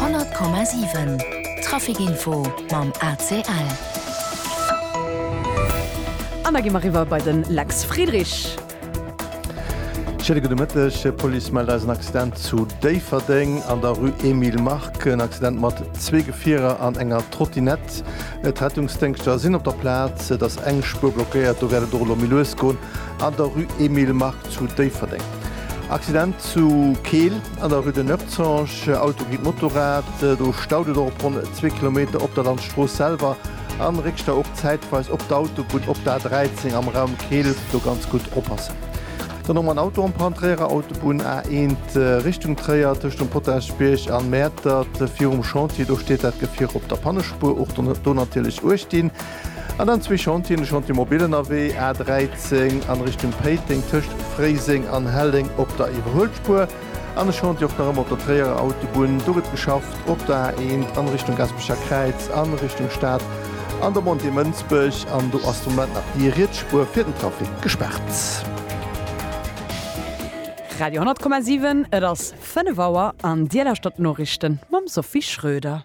100,7 Trafic Info mam ACL. An da gi mer eriwwer bei den Lex Friedrich. Schéine gudde Mëtteg. D'Police mellt eis en Accident zu Déifferdeng an der Rue Emile Mark. En Accident mat zwee Gefierer an enger Trottinette. D'Rettungsdéngschter sinn op der Plaz. Et ass eng Spuer blockéiert. Do wäert et och elo méi lues goen an der Rue Emile Mark zu Déifferdeng. Accident zu Keel an der Rue de Neufzange, Auto géint Motorrad, do staut et och op ronn zwee Kilometer op der Landstrooss selwer a réck Stau och zäitweis op d'Autobunn op der A13 am Raum Keel, do ganz gutt oppassen. Dann och mol en Auto am Brand, Tréierer Autobunn A1 Richtung Tréier tëscht dem Potaschbierg an Mäertert virum Chantier, do steet dat Gefier op der Pannespuer, och do natierlech uecht dinn. An dann zwee Chantieren, de Chantier Mobilen Awee, A 13, an Richtung Péiteng tëscht Fréiseng an Helleng op der Iwwerhuelspuer, an e Chantier och nach ëmmer op der Tréierer Autobunn, do gëtt geschafft op der A1 an Richtung Gaspecher Kräiz an Richtung Stad an der Montée Mënsbech, an do ass de Moment nach déi riets Spuer fir den Trafic gespaart. Radio 100,7, et ass 5 Auer an Dir lauschtert d'Noriichten mam Sophie Schröder.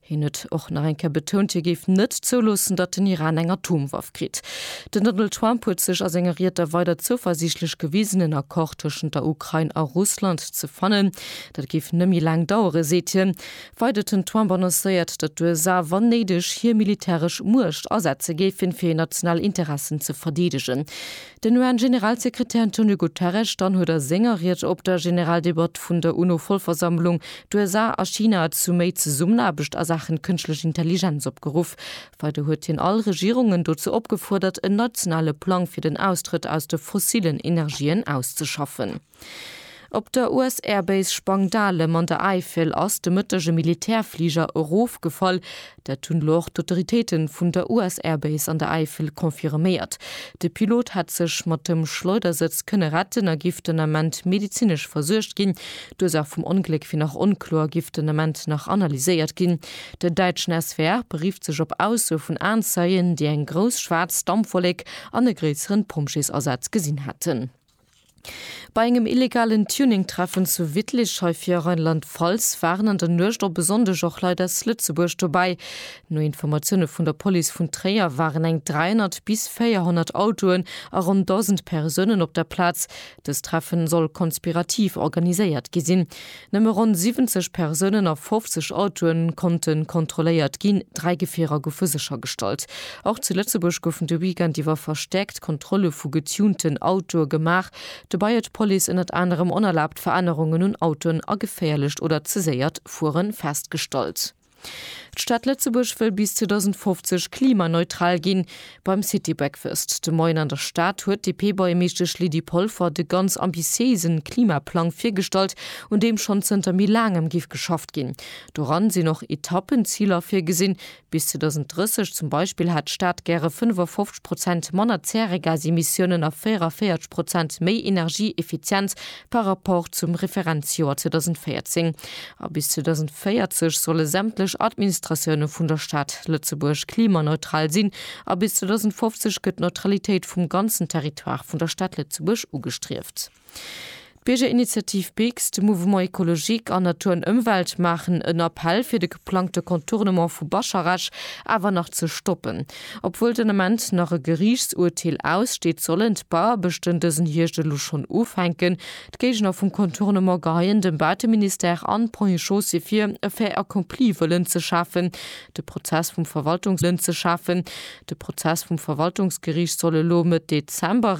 Hien huet och nach eng Kéier betount, hie géif net zouloossen, datt den Iran eng Atomwaff kritt. Den Donald Trump huet sech a senger Ried da weider zouversiichtlech gewisen, en Accord tëschent der Ukrain a Russland ze fannen. Dat géif net méi laang dauere seet hien. Weider huet den Trump annoncéiert, datt d'USA, wann néideg, hir militäresch Muecht asetze géifen, fir hir national Interessen ze verdeedegen. Den UN-Generalsekretär Antonio Guterres dann huet a senger Ried op der Generaldebatt vun der UNO-Vollversammlung d'USA a China zu méi Zesummenaarbecht a Saachen Kënschtlech Intelligenz opgeruff. Weider huet hien all Regierungen dozou opgefuerdert en nationale Plang fir den Austrëtt aus de fossillen Energien auszeschaffen. Op der US-Air-Base Spangdahlem an der Äifel ass de Mëtteg e Militärfliger erofgefall. Dat hunn elo och d'Autoritéite vun der US-Air-Base an der Äifel confirméiert. De Pilot hätt sech mat dem Schleudersëtz kënne retten a giff den Ament medezinesch versuergt ginn. D'Ursaach vum Ongléck wier nach onkloer a giff den Ament nach analyséiert ginn. Den däitschen SWR berifft sech op Aussoe vun Aenzeien, déi eng grouss schwaarz Dampwollek an e gréisseren Pompjeesasaz gesinn hätten. Bei engem illegalen Tuning-Treffen zu Wittlich, hei fir Rheinland-Pfalz, waren an der Nuecht op e Sonndeg och Leit aus Lëtzebuerg dobäi. No Informatioune vun der Police vun Tréier waren eng 300 bis 400 Autoen a ronn 1.000 Persounen op der Plaz. Dëst Treffen soll konspirativ organiséiert gi sinn. Nëmme ronn 70 Persounen a 50 Autoe konnte kontrolléiert ginn, dräi Gefierer goufe séchergestallt. Och zu Lëtzebuerg goufen de Weekend iwwer verstäerkt Kontrolle vu getunten Autoe gemaach. Dobäi huet d'Police ënnert anerem onerlaabt Verännerungen un Autoen a geféierlecht oder ze séiert Fuere festgestallt. D'Stad Lëtzebuerg wëll bis 2050 klimaneutral ginn. Beim City Breakfast de Moien an der Stad huet d'DP-Buergermeeschtesch Lydie Polfer de ganz ambitiéise Klimaplang virgestallt, un deem schonn zënter méi laangem géif geschafft ginn. Doran sinn och Etappenziler virgesinn. Bis 2030 zum Beispill hätt d'Stad gäre 55 Prozent manner Zäregasemissiounen a 44 Prozent méi Energieeffizienz par rapport zum Referenzjoer 2014. A bis 2040 solle sämtlech Administratioune vun der Stad Lëtzebuerg klimaneutral sinn a bis 2050 gëtt d'Neutralitéit vum ganzen Territoire vun der Stad Lëtzebuerg ugestrieft. D'Biergerinitiativ BIGS, de Mouvement Ecologique an Natur an Ëmwelt maachen en Appell fir de geplangte Contournement vu Bascharage awer nach ze stoppen. Obwuel den Ament nach e Geriichtsurteel aussteet, sollen d'Bauaarbechten dësen Hierscht elo schonn ufänken. D'Géigner vum Contournement geheien dem Baateministère an d'Premier Chaussée vir, e Fait accompli wëllen ze schafen. De Prozess vum Verwaltungsgeriicht soll elo Mëtt Dezember.